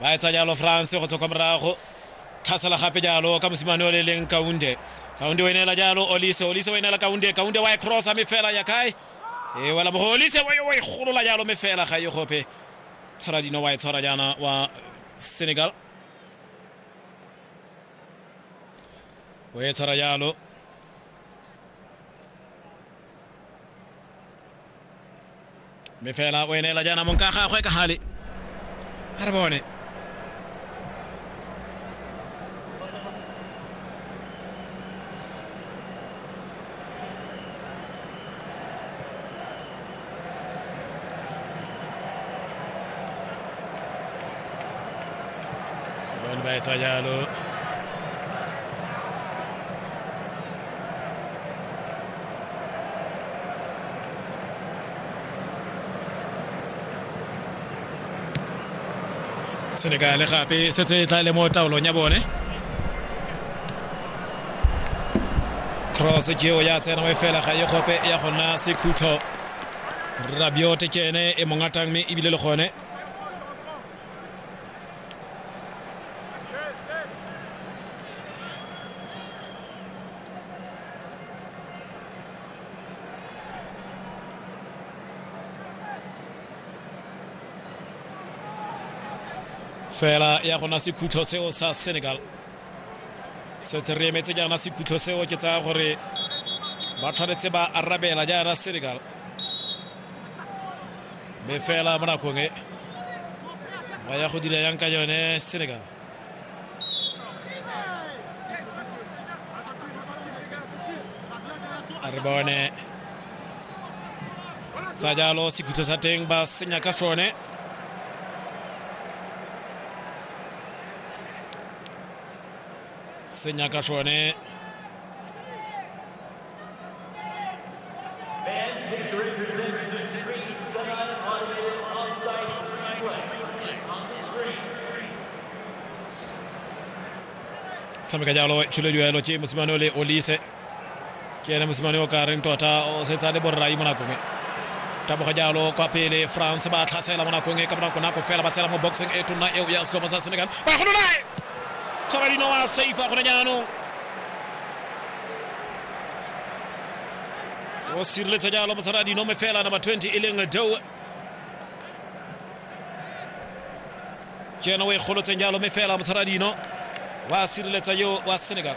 ba etsa jalo france go tswa kwa morago tlhasela gape jalo ka mosimane o le leng kaunde kaunde o e neela jalo olise olise o e neela kaunde kaunde wa e crossa me fela ya kae e wela mogo olise wa e golola jalo me fela ga e gope tshwara dino wa e tshwara jaana wa senegal o e tshwara jalo mme fela o eneela jaana mong ka gagwe ka gale a re bone bone ba etsa jalo senegale gape e setse e tla le mo taolong ya bone cross keo ya tsena mo e fela ga e gope ya go nna sekhutlo rabiote ke ene e mongatang mme ebile le gone fela ya gona sekhutlho seo sa senegal setse re emetse jaana sekhutlho seo ke tsaya gore ba tshwanetse ba arabela jaana senegal mme fela mo nakong e ba ya go dira yang ka yone senegal a re bone tsa jalo sekhutso sa teng ba senya ka sone senya ka sone tshameka jalo tšhiledio elo ke mosimane o le olise ke ene mosimane o ka reng tota o setse a le borrai mo nakong e taboga jalo kwa pele france ba tlhasela mo nakong e ka bonako nako fela ba tsela mo boxing e tonna eo ya setlhopha sa senegal ba gololae tshwara dino wa safe a gone jaanong o sireletsa jalo mosala dinome fela nama 20 e leng doe ke ena o e golotseng jalo mme fela motshwara dino wa sireletsa yo wa senegal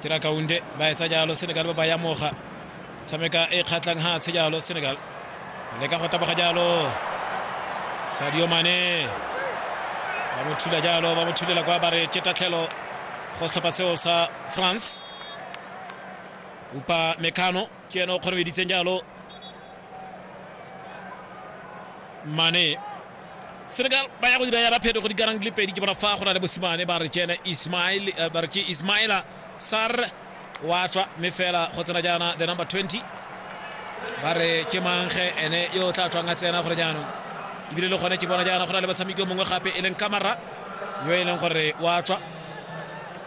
tira kaunde ba etsa jalo senegal ba ba yamoga tshameka e kgatlhang ha tshe jalo senegal le ka go taboga jalo sadio mane ba mo thula jalo ba mo thulela kwa ba re ke tatlhelo go setlhopha seo sa france upa mekano ke ena o kgonobeditseng jalo mane senegal ba ya go dira yana phetogo di karang di le pedi ke bona fa go na le bosimane ba re ke ena ismail eh, ba re ke ismaila sar wa tswa mme fela go tsena jaana the number 20 ba re ke mangge ene yo o tla tswang a tsena gore jaanong ebile le gone ke bona jaana go na le batshameki yo mongwe gape e leng kamara yo e leng gore wa tswa